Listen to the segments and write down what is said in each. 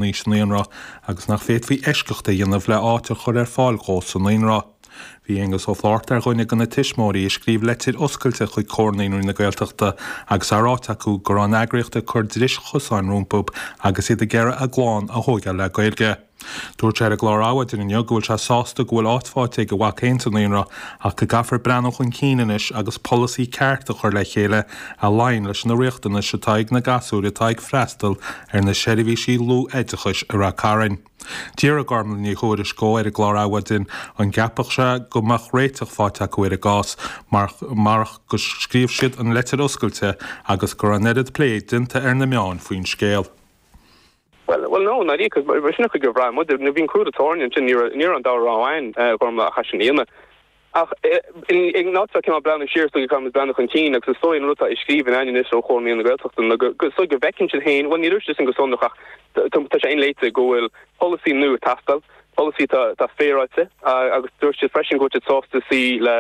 aois sa naíonra agus nach bhféadfaí eisceacht a dhéanamh le áit a chur ar fáil dhó sa naíonra. Bhí Aengus Ó Flaithearta ar dhuine de na tuismitheoirí a scríobh leitir oscailte chuig Comhar Naíonraí na Gaeltachta agus é ráite acu go raibh an eagraíocht ag cur dris chosáin rompu agus iad ag iarraidh a gclann a thógáil le Gaeilge. Dúirt sé ar an gclár Adhmhaidin inniu go bhfuil sé sásta go bhfuil áit fáighte ag a mhac féin sa naíonra ach go gcaithfear breathnú chun cinn anois agus polasaí ceart a chur le chéile a luíonn leis na riachtanais atá ag na gasúir atá ag freastal ar na seirbhísí luathoideachais i Ráth Chairn. D'fhiafraigh Gormfhlaith Ní Thuairisg ar an gclár Adhmhaidin an gceapfadh sé go mbeadh réiteach faighte acu ar an gcás marach gur scríobh siad an leitir oscailte agus go raibh an oiread plé déanta ar na meáin faoin scéal. Bhuel no, ní dóigh, sin an chaoi ar bhraith muid, nuair a bhí an crú ar an tairne ansin, ní raibh an dara rogha againn, a Ghormfhlaith, ach é sin a dhéanamh. Ach in áit, cineál breathnú siar is dóigh go gcaithfidh muid breathnú chun cinn, agus is dóigh an rud atá i scríbhinn againn anois ó Chomhar Naíonraí na Gaeltachta ná go, is dóigh go bhfeiceann siad féin, bhuel, ní dúirt siad sin go sonrach ach tá sé inléite, go bhfuil polasaí nua ag teastáil, polasaí atá féaráilte, agus dúirt siad freisin go bhfuil siad sásta suí le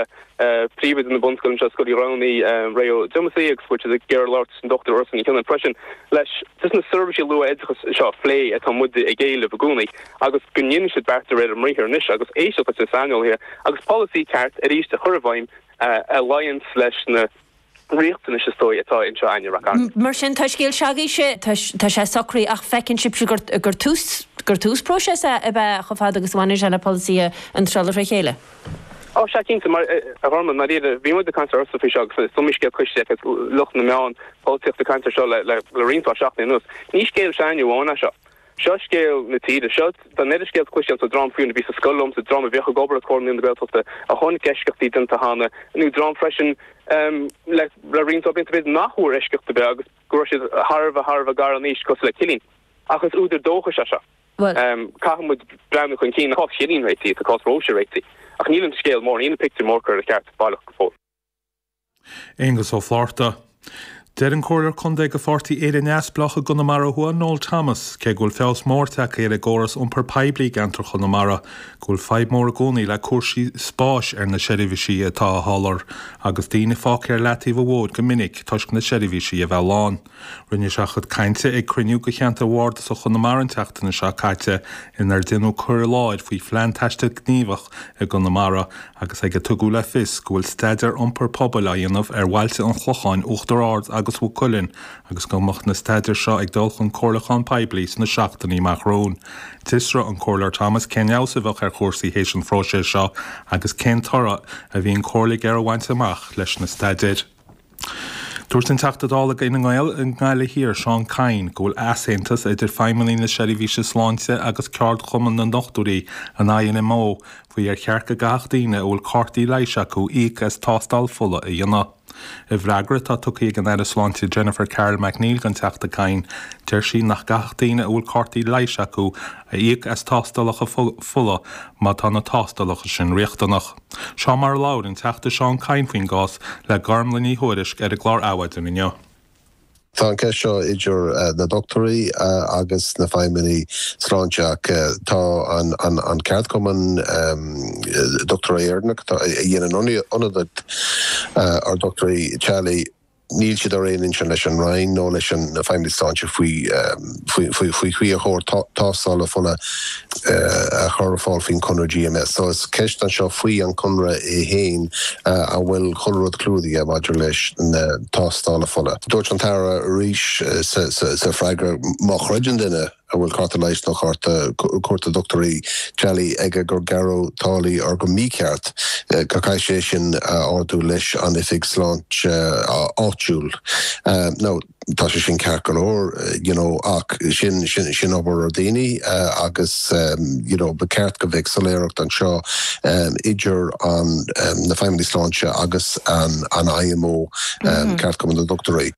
príomhoide na bunscoile anseo, Scoil Uí Ghramhnaigh, Ray Diamond síos, agus go bhfuil siad ag iarraidh labhairt leis an Dochtúir Ursula Ní Choinín freisin leis na seirbhísí luath-oideachais seo a phlé, mar, atá muide ag éileamh i gcónaí. agus go ndéanfaidh siad beart de réir a mbriathar anois agus éisteacht leis na saineolaithe agus polasaí ceart arís a chur i bhfeidhm a luíonns leis na riachtanais, is dóigh, atá anseo againn i Ráth Chairn. Mar sin, tá scéal do ghasúirse, tá sé socraithe ach feiceann sibhse gur tús, gur tús próiseas é ab ea chomh fada agus a bhaineann sé le polasaí a tharraingt le chéile. Ó, sea, cinnte, a Ghormfhlaith, mar a bhí, bhí muid ag caint ar ndóigh faoi seo agus is iomaí scéal cloiste ag lucht na meán, polaitíochta ag caint air seo le roinnt seachtainí anuas. Ní scéal s'againne amháin é seo. Seo scéal na tíre. Seo, tá an oiread scéal cloiste againn, dream fiú a bhí sa scoil liomsa, dream a bhíodh ag obair le Comhar Naíonraí na Gaeltachta, a chonaic eisceachtaí déanta cheana, nó dream freisin le roinnt blianta beaga nach bhfuair eisceacht ar bith agus go raibh siad thar a bheith, thar a bheith gar in aois, cosúil le Cillín. Ach is údar dóchais é seo. Caithfidh muid breathnú chun cinn. Tá cás Chillín réitithe, tá cás Róise réitithe, ach níl an scéal mór,, níl an pictiúr mór curtha ar cheart, baileach, go fóill. Aengus Ó Flaithearta, Deir an Comhairleoir Contae de Pháirtí Éire Neamhspleách i gConamara Thuaidh, Noel Thomas, cé go bhfuil feabhas mór tagtha ar an gcóras iompair poiblí i gceantar Chonamara, go bhfuil fadhb mhór i gcónaí le cúrsaí spáis ar na seirbhísí atá á soláthar agus daoine fágtha ar leataobh an bhóthair go minic toisc na seirbhísí a bheith lán. Rinne sé a chuid cainte ag cruinniú de cheantar Bardasach Chonamara an tseachtain seo caite inar déanadh cur i láthair faoi phlean taistil gníomhach i gConamara agus ag ar tugadh le fios go bhfuil staidéar iompair pobail á dhéanamh ar bhailte an Chlocháin, Uachtar Ard agus Mhaigh Cuilinn agus go mbeadh na staidéir seo ag dul chun comhairliúcháin poiblí sna seachtainí amach romhainn. D'fhiosraigh an Comhairleoir Thomas cén feabhas a bheadh ar chúrsaí tar éis an phróisis seo agus cén toradh a bhí an chomhairle ag iarraidh a bhaint amach leis na staidéir. Dúirt an Teachta Dála ag Fine Gael i nGaillimh Thiar, Seán Kyne, go bhfuil easaontas idir feidhmeannaigh na seirbhíse sláinte agus ceardchumann na ndochtúirí, an IMO, faoi ar cheart go gcaithfeadh daoine a bhfuil cártaí leighis acu íoc as tástáil fola a dhéanamh. I bhfreagra atá tugtha ag an Aire Sláinte Jennifer Carroll MacNeill don Teachta Kyne, deir sí nach gcaithfeadh daoine a bhfuil cártaí leighis acu íoc as tástálacha fola má tá na tástálacha sin riachtanach. Seo mar a labhair an Teachta Seán Kyne faoin gcás le Gormlaith Ní Thuairisg ar an gclár Adhmhaidin inniu. Tá an cheist seo idir na dochtúirí agus na feidhmeannaigh sláinte, ach tá an ceardchumann dochtúirí Éireannach, a dhéanann ionadaíocht ar dhochtúirí teaghlaigh, Níl siad ar aon intinn leis an Roinn nó leis na Feidhmeannaigh Sláinte faoin gcaoi ar chóir tástálacha fola a chur ar fáil faoin chonradh GMS. So is ceist anseo faoi an chonradh é fhéin an bhfuil chuile rud clúdaithe maidir leis na tástálacha fola. Dúirt an tAire arís sa freagra má chreideann duine, a bhfuil cárta leighis nó cárta cuairte dochtúra teaghlaigh aige gur gearradh táillí air go mícheart, go gcaithfidh sé sin a ardú leis an oifig sláinte áitiúil. Now, tá sé sin ceart go leor, you know, ach sin, sin, sin obair ar dhaoine agus, you know, ba cheart go mbeadh soiléireacht anseo idir an, na feidhmeannaigh sláinte agus an IMO, Ceardchumann na nDochtúirí.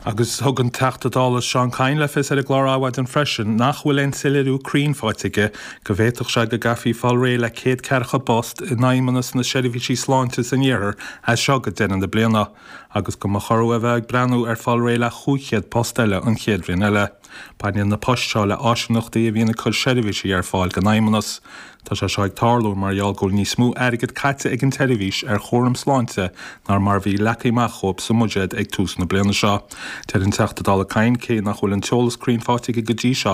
Agus thug an Teachta Dála Seán Kyne le fios ar an gclár Adhmhaidin freisin nach bhfuil aon soiléiriú cruinn faighte aige go bhféadfadh sé go gcaithfí fáil réidh le céad ceathracha post i bhFeidhmeannas na Seirbhíse Sláinte san Iarthar as seo go deireadh na bliana agus go mba chóir dóibh a bheith ag breathnú ar fáil réidh le cúig chéad post eile an chéad bhliain eile. Baineann na poist seo le áisíneachtaí a bhíonn ag cur seirbhísí ar fáil don Fheidhmeannas. Tá sé seo ag tarlú mar gheall go bhfuil níos mó airgid caite ag an tseirbhís ar chúram sláinte ná mar a bhí leagtha amach dóibh sa mbuiséad ag tús na bliana seo. Deir an Teachta Dála Kyne cé nach bhfuil an t-eolas cruinn faighte aige go dtí seo